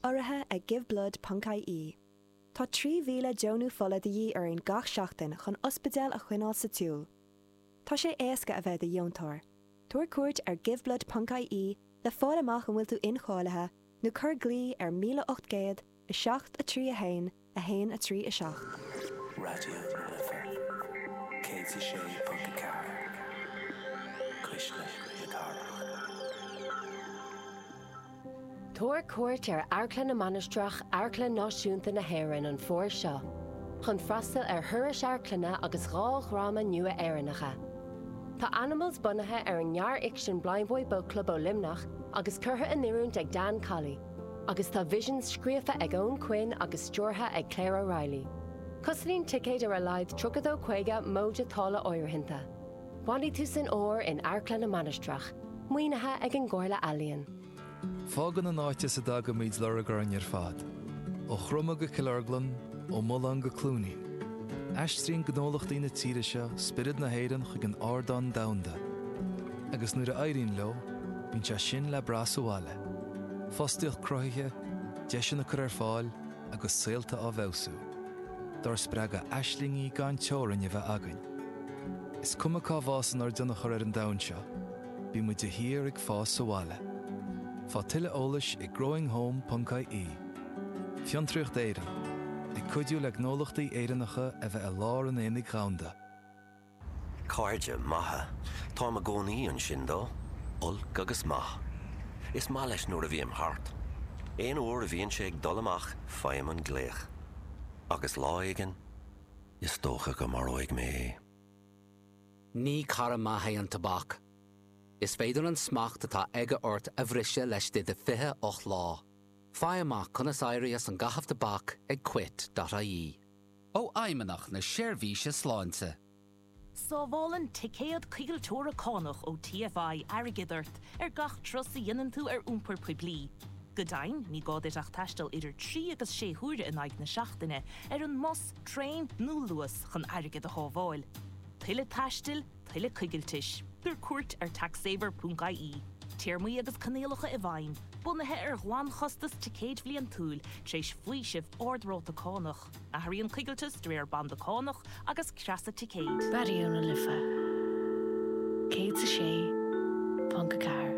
Urraithe ag Giveblood ponc ie Tá 3,000 deonú fola de dhíth orainn gach seachtain chun ospidéil a choinneáil sa tsiúl. Tá sé éasca a bheith i do dheontóir. Tabhair cuairt ar giveblood ponc ie le fáil amach an bhfuil tú incháilithe nó cuir glao ar 1800 7, 3, 1, 1, 3, 7. Raidió na Life 106.4 Cuisle na Cathrach. Tabhair cuairt ar Amharclann na Mainistreach, Amharclann Náisiúnta na hÉireann an Fómhar seo chun freastal ar thurais amharclainne agus dhá dhráma nua Éireannacha. Tá Animals bunaithe ar an ngearrfhicsean Blindboy Boatclub ó Luimneach agus curtha in oiriúint ag Dan Colley. Agus tá Visions scríofa ag Eoghan Quinn agus stiúrtha ag Claire O'Reilly. Cosnaíonn ticéid ar a laghad Tríocha-Dó Caoga móide táille áirithinte. Bainfidh tusa an Fómhar in Amharclann na Mainistreach, maoinithe ag an gComhairle Ealaíon. Fágann an áit as a dtagaimíd lorg orainn ar fad. Ó Chroma go Cill Orglan, ó Mhaoláin go Cluainín. Aistríonn gnólachtaí na tíre seo spiorad na hÉireann chuig an ardán domhanda. Agus nuair a éiríonn leo, bíonn sé sin le brath sa bhaile. Fostaíocht cruthaithe, deiseanna á gcur ar fáil agus saolta á bhfeabhsú. Dár spreagadh aislingí gan teorainn a bheith againn. Is cuma cá bhfásann ár dtionchar ar an domhan seo, bímid de shíor ag fás sa bhaile. Faigh tuilleadh eolais ag growinghome.ie. Fiontraíocht Éireann, ag cuidiú le gnólachtaí Éireannacha a bheith i lár an aonaigh dhomhanda. Cairde maithe. Táim i gcónaí ansin dó. Olc agus maith. Is maith leis nuair a bhím thart. Aon uair a bhíonn sé ag dul amach faighim an glaoch. Agus lá éigin is dócha go maróidh mé é. Ní cara maith é an tobac. Is féidir an smacht atá aige ort a bhriseadh laistigh de fhiche ocht lá. Faigh amach conas éirí as an gcaitheamh tobac ag quit.ie. ó Fheidhmeannacht na Seirbhíse Sláinte. Sábhálann ticéad coigilteora cánach ó TFI airgead ort ar gach turas a dhéanann tú ar iompar poiblí. Go deimhin, ní gá duit ach taisteal idir trí agus sé huaire in aghaidh na seachtaine ar an mbus, traein nó Luas chun airgead a shábháil. Tuilleadh taistil, tuilleadh coigiltis. Tabhair cuairt ar taxsaver.ie. Téarmaí agus coinníollacha i bhfeidhm, bunaithe ar ghlanchostas ticéid bhliantúil, tar éis faoiseamh ard-ráta cánach. Athraíonn coigilteas de réir banda cánach agus creasa ticéid. Raidió na Life 106.4.